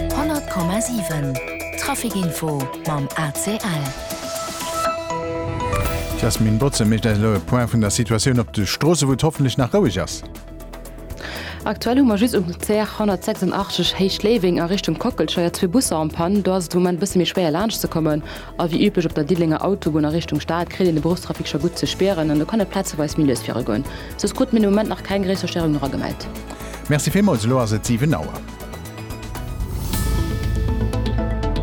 100,7 Traficinfo mam ACL. D'Jasmine Botze mécht eis elo e Point vun der Situatioun op de Stroosse, wou et hoffentlech nach roueg ass. Aktuell hu mer just um CR 186 Héicht-Léiweng a Richtung Kockelscheier zwee Busser en panne. Do ass et de Moment e bësse méi schwéier laanscht ze kommen. A wéi üblech op der Diddelenger Autobunn a Richtung Stad kritt een de Beruffstrafic scho gutt ze spieren an do kann et plazeweis méi lues vire goen. Soss krute mir de Moment nach keng gréisser Störung no ra gemellt. Merci villmools, elo ass et 7 Auer.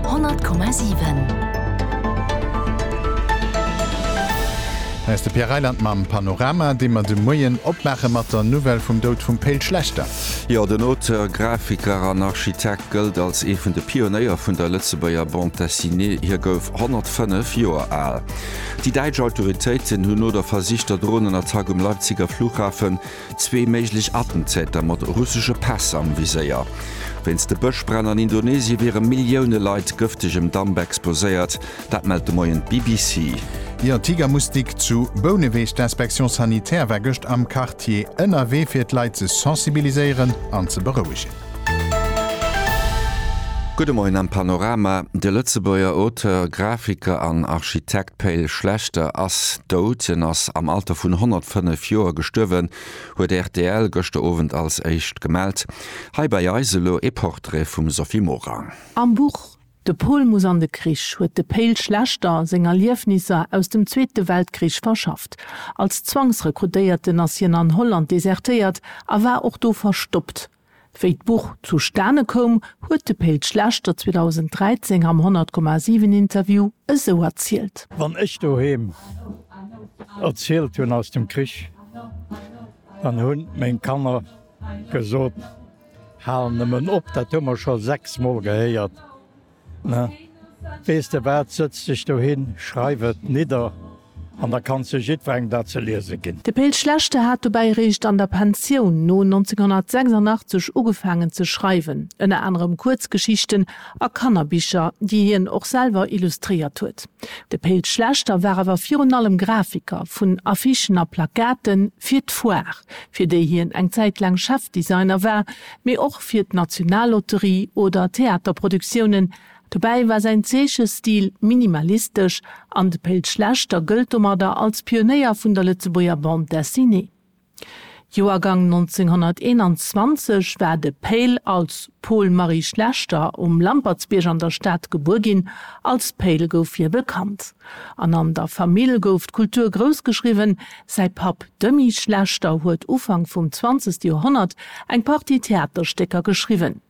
100,7. Hei ass de Pierre Reyland mam Panorama, dee mer de Moien opmaache mat der Nouvelle vum Doud vum Pe'l Schlechter. Jo, den Auteur, Grafiker an Architekt. gëllt als ee vun de Pionéier vun der Lëtzebuerger Bande Dessinée, hie gouf 105 Joer al. Déi däitsch Autoritéiten hunn no der versichter Dronenattack um Leipziger Flughafen zwee méiglech Attentäter mat russesche Päss am Viséier. Wéinst de Bëschbränn an Indonesie wiere Millioune Leit gëftegem Damp exposéiert, dat mellt de Moien d'BBC. Ier Tiger Moustique zu Bouneweg, D'Inspection Sanitaire war gëscht am Quartier ënnerwee fir d'Leit ze sensibiliséieren an ze berouegen. Gudde Moien am Panorama, De Lëtzebuerger Auteur, Grafiker an Architekt Pe'l Schlechter ass dout. Hien ass am Alter vun 105 Joer gestuerwen, huet rtl gëschter Owend als éischt gemellt. Hei bei eis elo ee Portrait vum Sophie Morang. Am Buch De Pol muss an de Krich huet de Pale Schlechter seng Erliefnisser aus dem Zweete Weltkrich verschafft. Als Zwangsrekrutéierten ass hien an Holland desertéiert a war och do verstoppt. Wéi d'Buch zustane koum, huet de Pale Schlechter 2013 am 100,7 Interview esou erzielt. Wann ech doheem erzielt hunn aus dem Krich, dann hunn meng Kanner gesot, Hal nëmmen op, dat hu mer scho sechs Mol gehéiert. Na, weess de wat, sëtz dech dohin, schreif et nidder an da kann se jiddwerengem dat ze liese ginn. De Pe'l Schlechte hat dobäi eréischt an der Pensioun no 1986 ugefaangen ze schreiwen, ënner anerem Kuerzgeschichten a Kannerbicher, déi hien och selwer illustréiert huet. De Pe'l Schlechter war awer virun allem Grafiker vun Affichen a Plakaten fir d'Foire. fir déi hien eng Zäit laang Chefdesigner war, mee och fir d'Nationallotterie oder Theaterproduktiounen. Dobäi war säin Zeechestil minimalistesch an de Péll Schlechter gëllt domadder als Pionéier vun der Lëtzebuerger Bande Dessinée. Joergang 1921 war de Péll als Paul Marie Schlechter um Lampertsbierg an der Stad gebuer ginn. Als Péll gouf hie bekannt an an der Famill gouf d'Kultur groussgeschriwwen. Säi Papp Demy Schlechter huet Ufank vum zwanzegste Joerhonnert eng Partie Theaterstécker geschriwwen.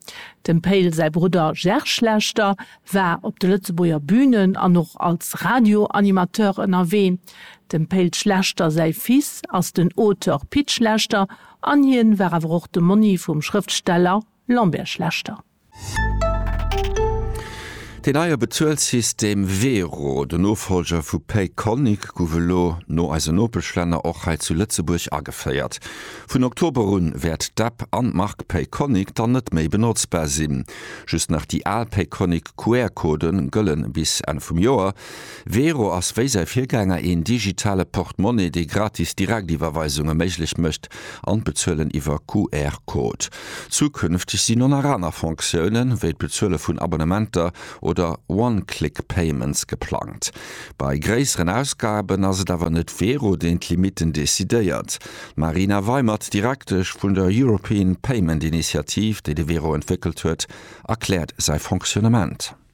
Dem Payl säi Brudder Ger Schlechter war op de Lëtzebuerger Bünen an och als Radioanimateur ënnerwee. Dem Payl Schlechter säi Fils ass den Auteur Pit Schlechter an hien war awer och de Monni vum Schrëftsteller Lambert Schlechter. Deen neie Bezuelsystem Wero, den Nofollger vu Payconiq, gouf elo no eisen Nopeschlänner och hei zu Lëtzebuerg ageféiert. Vun Oktober un wäert d'App an d'Mark Payconiq dann net méi benotzbar sinn. Just nach déi al Payconiq QR-Code gëlle bis Enn vum Joer. Wero ass wéi säi Virgänger een digitale Portmonnaie, dee gratis Direktiwwerweisunge méiglech mécht an d'Bezuelen iwwer QR-Code. Zukünfteg sinn oner aner Fonctiounen, wéi d'Bezuele vun Abonnementer oder One-Click Payments geplangt. Bei gréisseren Ausgaben ass et awer net Vero, deen d'Limitten decidéiert. D'Marina Weimert, Direktesch vun der European Payment Initiative, déi de Vero entwéckelt huet, erkläert säi Fonctionnement.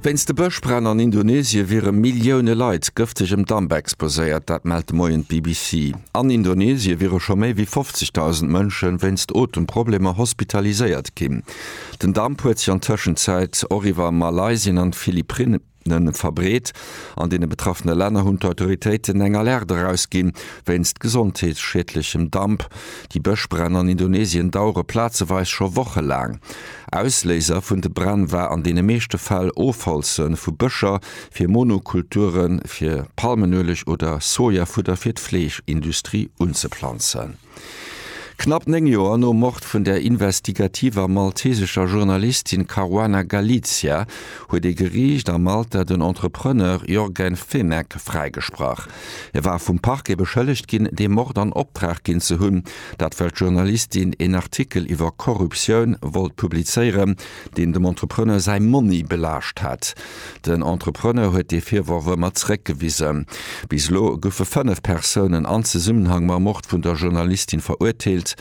Wéinst de Bëschbränn an Indonesie wiere Millioune Leit gëftegem Damp exposéiert. Dat mellt de Moien d'BBC. An Indonesie wiere scho méi wéi 50.000 Mënsche wéinst Otemproblemer hospitaliséiert ginn. Den Damp huet sech an Tëschenzäit och iwwer Malaysien an d'Philippinne verbreet. An deene betraffene Länner hunn d'Autoritéiten eng Alerte erausginn, wéinst gesondheetsschiedlechem Damp. Déi Bëschbränn an Indonesien dauere plazeweis scho wochelaang. Ausléiser vun de Bränn war an deene meeschte Fäll Ofholze vu Bëscher fir Monokulture fir Palmenueleg oder Sojafudder fir d'Fleeschindustrie unzeplanzen. Knapp néng Joer nom Mord vun der investigativer maltesescher Journalistin Caruana Galizia huet ee Geriicht a Malta den Entrepreneur Yorgen Fenech fräigesprach. E war vum Parquet beschëllegt ginn, dee Mord an Optrag ginn ze hunn, Dat well d'Journalistin een Artikel iwwer Korruptioun wollt publizéieren, deen dem Entrepreneur säi Monni belaascht hätt. Den Entrepreneur huet dee Virworf ëmmer zeréckgewisen. Bis elo goufe fënnef Persounen an Zesummenhang mam Mord vun der Journalistin verurteelt.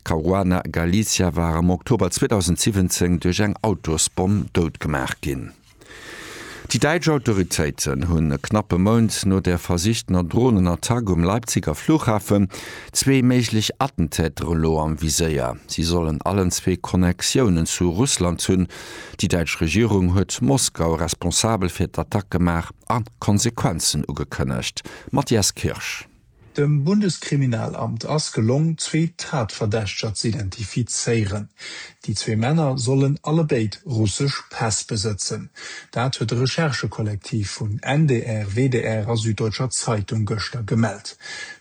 Caruana Galizia war am Oktober 2017 duerch eng Autosbomm doutgemaach ginn. Déi däitsch Autoritéiten hunn e knappe Mount no der versichtener Dronenattack um Leipziger Flughafen zwee méiglech Attentäter elo am Viséier. Si sollen allen zwee Connectiounen zu Russland hunn. Déi däitsch Regierung huet Moskau responsabel fir d'Attack gemaach a Konsequenzen ugekënnegt. Matthias Kirsch. Dem Bundeskriminalamt ass gelong, zwee Tatverdächteger z'identifizéieren. Déi zwee Männer sollen allebéid russesch Päss besëtzen. Dat huet de Recherchekollektiv vun NDR, WDR a Süddeutscher Zeitung gëschter gemellt.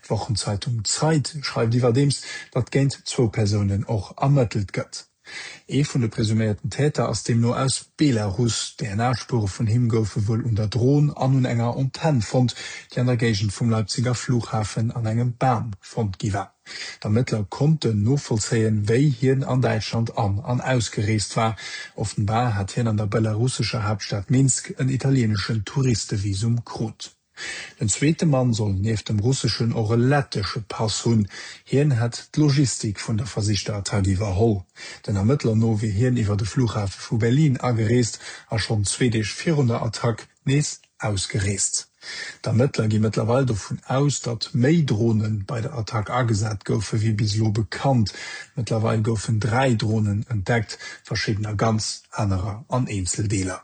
D'Wochenzeitung Zeit schreift iwwerdeems, datt géint zwou Persounen och ermëttelt gëtt. Ee vun de presuméierten Täter ass deemno aus Belarus. DNA-Spuere vun him goufe wuel un der Dron an un enger Antenn fonnt, déi an der Géigend vum Leipziger Flughafen an engem Bam fonnt gi war. D'Ermëttler konnten novollzéien, wéi hien an Däitschland an an ausgereest war. Offenbar hat hien an der belarussescher Haaptstad Minsk en italieeneschen Touristevisum krut. Den zweete Mann soll nieft dem russeschen och e lettesche Pass hunn. Hien hätt d'Logistik vun der versichter Attack iwwerholl. Den Ermëttler no wier hien iwwer de Flughafe vu Berlin agereest a schonn zwee Deeg virun der Attack nees ausgereest. D'Ermëttler gi mëttlerweil dovun aus, datt méi Drone bei der Attack agesat goufe wéi bis elo bekannt. Mëttlerweil goufen dräi Dronen entdeckt, verschiddener ganz, anerer an Eenzeldeeler.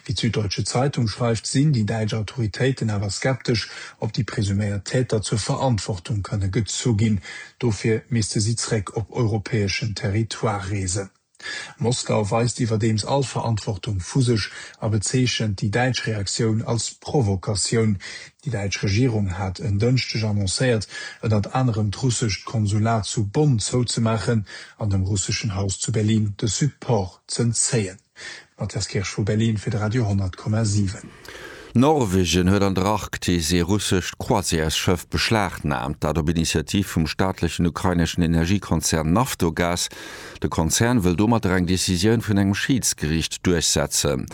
Wéi d'Süddeutsche Zeitung schreift, sinn déi däitsch Autoritéiten awer skeptesch, ob déi presuméiert Täter zur Verantwortung kënne gezu ginn. Dofir misste si zréck op europäeschen Territoire reesen. Moskau weist iwwerdeems all Verantwortung vu sech a bezeechent déi däitsch Reaktioun als Provokatioun. Déi däitsch Regierung hat en Dënschdeg annoncéiert, ënnert anerem d'russescht Konsulat zu Bonn zouzemaachen an dem russeschen Haus zu Berlin de Support z'entzéien. Mathias Kirsch vu Berlin fir de Radio 10,7. Norwegen huet an der Arktis ee russescht Croisièresschëff beschlagnaamt, dat op Initiativ vum staatlechen ukraineschen Energiekonzern Naftogaz. De Konzern wëll domatter eng Decisioun vun engem Schiedsgeriicht duerchsetzen.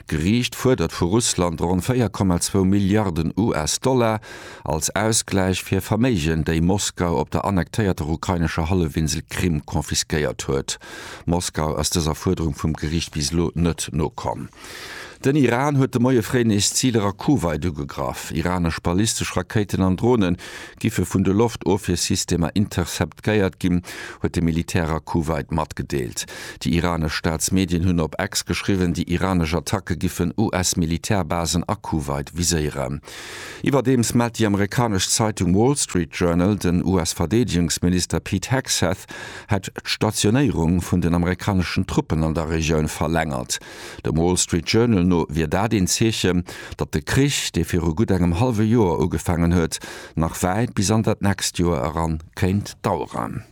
D'Geriicht fuerdert vu Russland ronn 4,2 Milliarden US-Dollar. als Ausgläich fir Verméigen, déi Moskau op der annektéierter ukrainescher Hallefinsel Krim confisquéiert huet. Moskau ass dëser Fuerderung vum Geriicht bis elo net nokomm. Den Iran huet de Moie fréi nees Ziler a Kuwait ugegraff. Iranesch ballistesch Rakéiten an Drone giffe vun de Loftofwiersystemer interceptgéiert ginn, huet de Militär a Kuwait matgedeelt. Déi iranesch Staatsmedien hunn op X geschriwwen, déi iranesch Attacke giffen US-Militärbasen a Kuwait viséieren. Iwwerdeems mellt déi amerikanesch Zeitung Wall Street Journal, den US-Verdeedegungsminister Pete Hegseth hätt d'Stationéierung vun den amerikaneschen Truppen an der Regioun verlängert. Dem Wall Street Journal no wier dat een Zeechen, datt de Krich, dee viru gutt engem hallwe Joer ugefaangen huet, nach wäit bis an dat nächst Joer eran kéint daueren.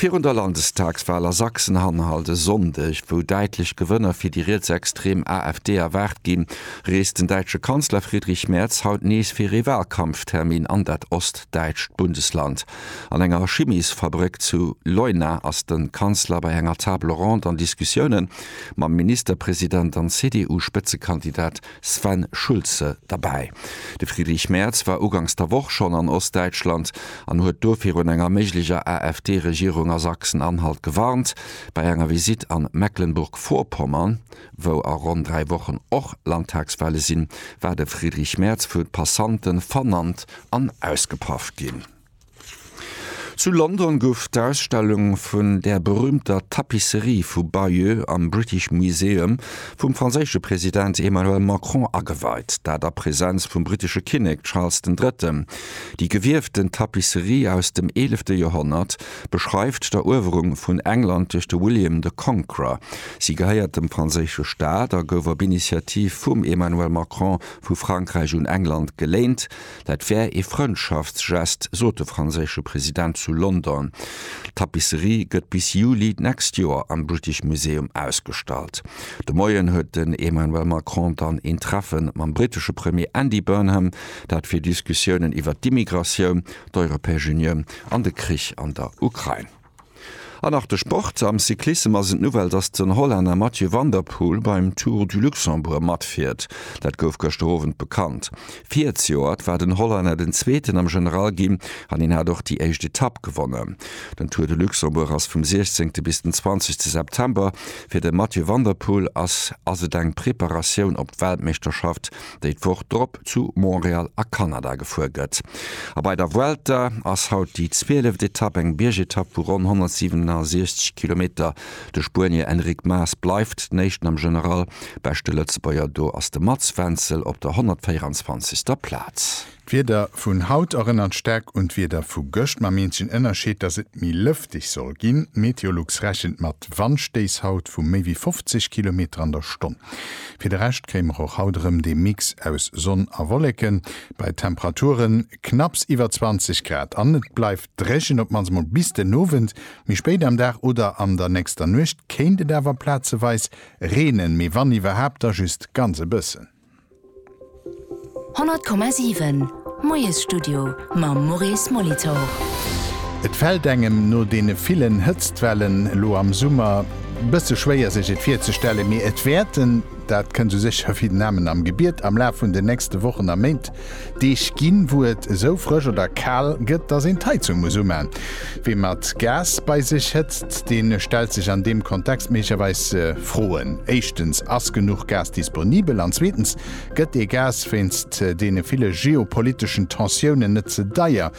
Virun der Landestagswal a Sachsen Anhalt e Sonndeg, wou däitlech Gewënner fir déi rietsextrem AfD erwaart ginn, reest den däitsche Kanzler Friedrich Merz haut nees fir ee Walkampftermin an dat ostdäitscht Bundesland. An enger Chimiesfabrëck zu Leuna ass de Kanzler bei enger Table ronde an Diskussioune mam Ministerpresident an CDU-Spëtzekandidat Sven Schulze derbäi. De Friedrich Merz war ugangs der Woch schonn an Ostdäitschland an huet do virun enger méiglecher AfD-Regierung a Sachsen-Anhalt gewarnt. Bei enger Visitt a Mecklenburg-Vorpommern, wou a ronn dräi Wochen och Landtagswahle sinn, war de Friedrich Merz vu Passante vernannt an ausgepaff ginn. Zu London gouf d'Ausstellung vun der berüümter Tapisserie vu Bayeux am British Museum vum franséische President Emmanuel Macron ageweit, dat a Präsenz vum brittesche Kinnek Charles den Drëtten. Déi gewieften Tapisserie aus dem eelefte Joerhonnert beschreift d'Eruewerung vun England duerch de William the Conqueror. Si gehéiert dem franséische Staat a gouf op Initiativ vum Emmanuel Macron vu Frankräich un England geléint, Dat wär ee Frëndschaftsgest, sot de franséische President zu London. D'Tapisserie gëtt bis Juli d'nächst Joer am British Museum ausgestallt. De Moien huet den Emmanuel Macron dann een Treffen mam britesche Premier Andy Burnham, dat fir Diskussiounen iwwert d'Immigratioun, d'Europäesch Unioun an de Krich an der Ukrain. An nach de Sport, Am Cyclissem ass et d'Nouvelle, dass den Hollänner Mathieu van der Poel beim Tour du Luxembourg matfiert. Dat gouf gëschter Owend bekannt. Virzijoert war den Hollänner den Zweeten am General ginn an hien hat och déi éischt Etapp gewonnen. Den Tour de Luxembourg ass vum 16 bis den 20 September. Fir de Mathieu van der Poel ass ass et eng Preparatioun op d'Weltmeeschterschaft. déi d'Woch drop zu Montreal a Kanada gefuer gëtt. A bei der Vuelta ass haut déi zwieleft Etapp, eng Biergetapp vu ronn 167 Kilometer. De Spuenier Enric Mas bleift den Éischten am General, beschte Lëtzebuerger do ass de Mats Wenzel op der 124. Plaz. D'Wieder vun haut erënnert staark un d'Wieder vu gëscht, mam eenzegen Ënnerscheed, dass et méi lëfteg soll ginn. Meteolux rechent mat Wandstéiss haut vu méi wéi 50 Kilometer an der Stonn. Fir de Rescht kréie mer och haut erëm dee Mix aus Sonn a Wolleken, bei Temperaturen knapps iwwer 20 Grad, an et bleift dréchen, op d'mannst mol bis den Owend. Méi spéit am Dag oder an der nächster Nuecht kéint et awer plazeweis reenen, mee wann iwwerhaapt, da just ganz e bëssen. 100,7 Moiesstudio mam Maurice Molitor. Et fällt engem no deene villen Hëtztwellen elo am Summer bësse schwéier sech et virzestellen, mee et wäerten, dat kënnt esou sécher wéi den Amen am Gebiet, am Laf vun den nächste Wochen a Méint Deeg ginn, wou et esou frësch oder kal gëtt, dass een d'Heizung muss umaan. Wee mat Gas bei sech hëtzt, dee stellt sech an deem Kontext méiglecherweis Froen. Éischtens, Ass genuch Gas disponibel? An zweetens, Gëtt dee Gas wéinst deene ville geopoliteschen Tensiounen net ze deier?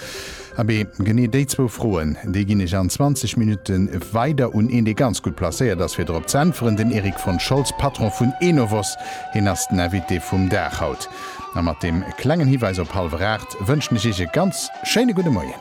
Abee, genee déi zwou Froen, déi ginn ech an 20 Minutte weider un een, dee ganz gutt placéiert ass, fir drop z'äntweren, den Erik von Scholz, Patron vun Enovos. Hien ass den Invité vum Dag haut. A mat deem klengen Hiweis op Halweraacht wënschen ech Iech e ganz schéine gudde Moien.